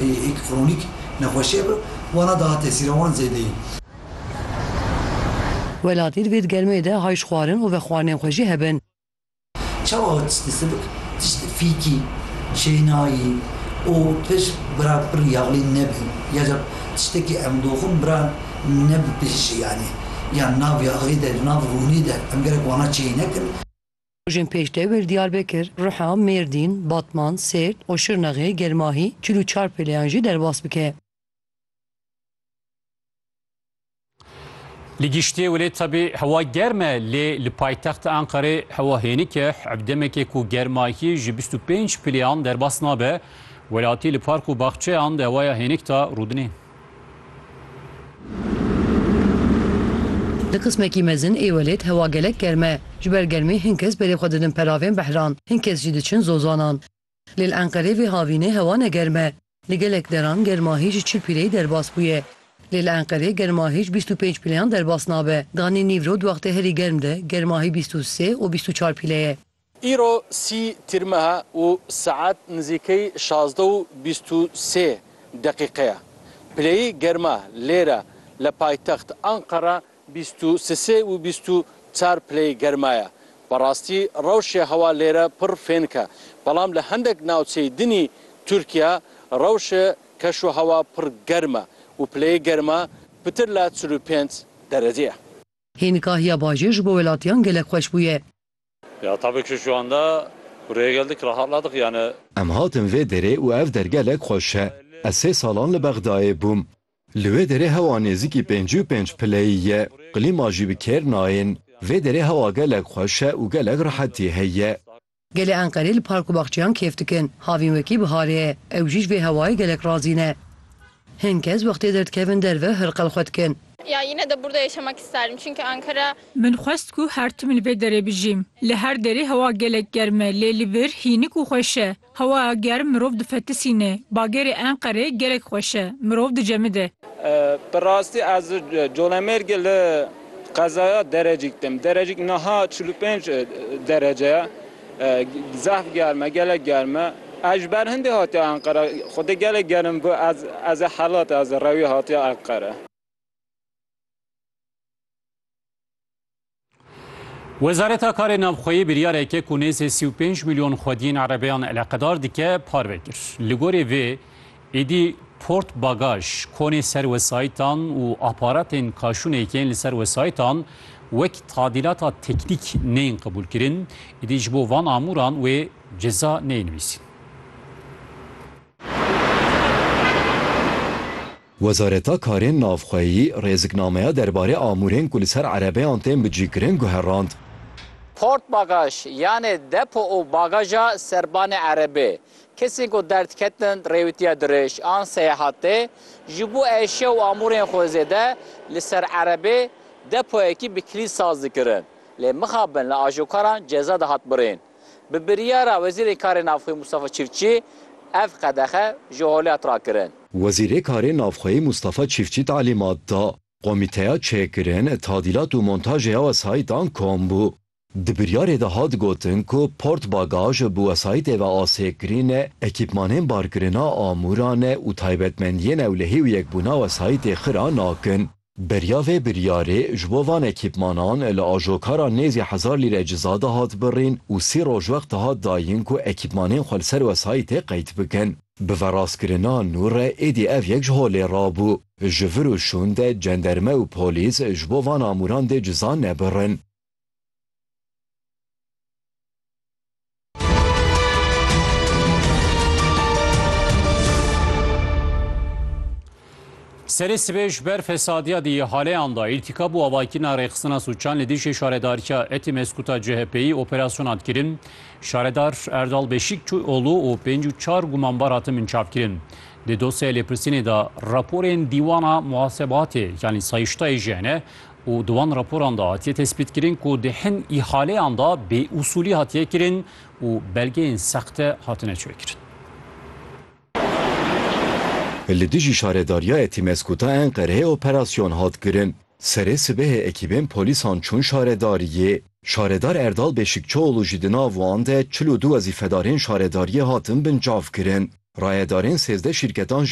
Hêk kronîk nexweşiye bi wana daha tesîra wan zêde ye. Welatî divê di germeyê de hay ji xwarin û vexwarinên xwe jî hebin. Çawa ho tiştê sibik, tiştê fîkî, şênayî û pir bira pir yexlîn nebi ya ca tiştekî em doxin bira nebi pêşî yanî ya nav ya axê de nav rûnê de em gerek wana çêy nekin. Rojên pêş de wê li Diyarbekir, Riha, Mêrdîn, Batman, Sêrt û Şirnexê, Gelmahî, çil û çar pêleyan jî derbas bike. Li giştê welê tevî hewa germ e lê li paytexta Enqerê hewa hênik e. Ev demekê ku germahiyê ji bîst û pênc pêleyan derbas nabe. Welatî li park û baxçeyan di hewaya hênik de rûdinê. Di qismekî mezin ê welêt hewa gelek germ e. Ji ber germê hin kes berê xwe didin peravên behran, hin kes jî diçin zozanan. Lê li Enqerê vê havînê hewa ne germ e. Li gelek deran germa hêj ji çil pîreyî derbas bûye. Lê li Enqerê germa hêj bîst û pênc pîleyan derbas nabe. Ganî nîvro di wextê herî germ de germa hê bîst û sê û bîst û çar pîle ye. Îro sî Tîrmeha û saet nizîkey şazde û bîst û sê deqîqe ye. Pileyî germa lêre le paytext Anqara bîst û sisê û bîst û çar pileyî germa ye. Bi rastî rewşê hewa lêre pir fênk e. Belam li hendek navçeyî dinî Tirkiye rewşê keşûhewa pir germ e û pileyî germa pitir la çil û pênc derecê ye. Hîn kahiya bajêr ji bo welatiyan gelek xweş bûye. Ya tabi ki şu anda buraya geldik rahatladık yani. Em hatin vê derê û ev der gelek xweş e. Ez sê salan li Bexdayê bûm. Li wê derê hewa nêzîkî pêncî û pênc pileyî ye. Klîma jî bi kêr nayên. Vê derê hewa gelek xweş e û gelek rehetî heye. Gelê Enqerê li park û baxçeyan kêf dikin. Havîn wekî biharê ye. Ew jî ji vê hewayê gelek razî ne. Hin kes wextê derdikevin derve hirqil xwe dikin. Ya yine de burada yaşamak isterdim çünkü Ankara. Min xwest ku her tim li vê derê bijîm. Li her derê hewa gelek germ e lê li vir hînik û xweş e. Hewaya germ mirov difetisîne. Bagerê Enqerê gelek xweş e. Mirov dicemide. Bi rastî ez li Colemêrgê li qezaya Derecîk tim. Derecîk niha çil û pênc derece ye. Zehf germ e, gelek germ e. Ez ji ber hindê hatiya Enqere. Xwedê gelek germ bû. Ez ez ê Helat e, ez ê rewî hatiya Enqere. Wezareta Karê Navxweyî biryarekê ku nêzê sî û pênc milyon xwediyên erebeyan eleqedar dike, parve kir. Li gorî vê, Êdî port bagaj, konê ser wesayîtan û aparatên kaşûnê yên li ser wesayîtan wek tadîlata teknîk neyên qebûlkirin, êdî ji bo van amûran wê ceza neyê nivîsîn. Wezareta Karên Navxweyî rêziknameya derbarê amûrên ku li ser erebeyan tên bicîkirin guherand. Port bagaj yanê depo û bagaja serbanê erebê Kesên ku derdketin rêwîtiya dirêj an seyahatê, ji bo eşya û amûrên xwe zêde li ser erebê depoyekî bi kilît saz dikirin. Lê mixabin li ajokaran ceza dihat birîn. Bi biryara Wezîrê Karê Navxweyî Mustafa Çîftçî ev qedexe ji holê hat rakirin. Wezîrê Karê Navxweyî Mustafa Çîftçî talîmat da, Komîteya Çêkirin, Tadîlat û Montajê ya Wesayîtan kom bû. Di biryarê de hat gotin ku Port Bagaj bi wesayîtê ve asêkirîn e, ekîpmanên barkirina amûran e û taybetmendiyên ewlehî û yekbûna wesayîtê xira nakin. Beriya vê biryarê ji bo van ekîpmanan li ajokara nêzî hezar lîre ciza de hat birîn û sî roj wext dihat dayîn ku ekîpmanên xwe li ser wesayîtê qeyd bikin. Bi veraskirina nû re êdî ev yek ji holê re bû. Ji vir û şûn de cenderme û polîs ji bo van amûran dê ciza nebirin. Serê sibê ji ber fesadiya di haleyan da îrtîkab û avakirina rêxistina sûçan li dijî şaredariya etî mezkuta CHP'yî operasyona dikirin. Şaredar Erdal Beşîk çû olû û pênc û çar gumanbar hatin binçavkirin. Di dosyaya lêpirsînê de raporên dîwana muhasebatê yanî sayîştayê ji hene û di wan raporan de hatiye tespîtkirin ku di hin îhaleyan de bêûsûlî hatiye kirin û belgeyên sexte hatine çêkirin. Li dijî Şaredariya Etimesgut a Enqereyê operasyon hat kirin. Serê sibehê ekîbên polîsan çûn şaredariyê. Şaredar Erdal Beşikçioğlu jî di nav wan de çil û du wezîfedarên şaredariyê hatin binçavkirin. Rayedarên sêzdeh şîrketan jî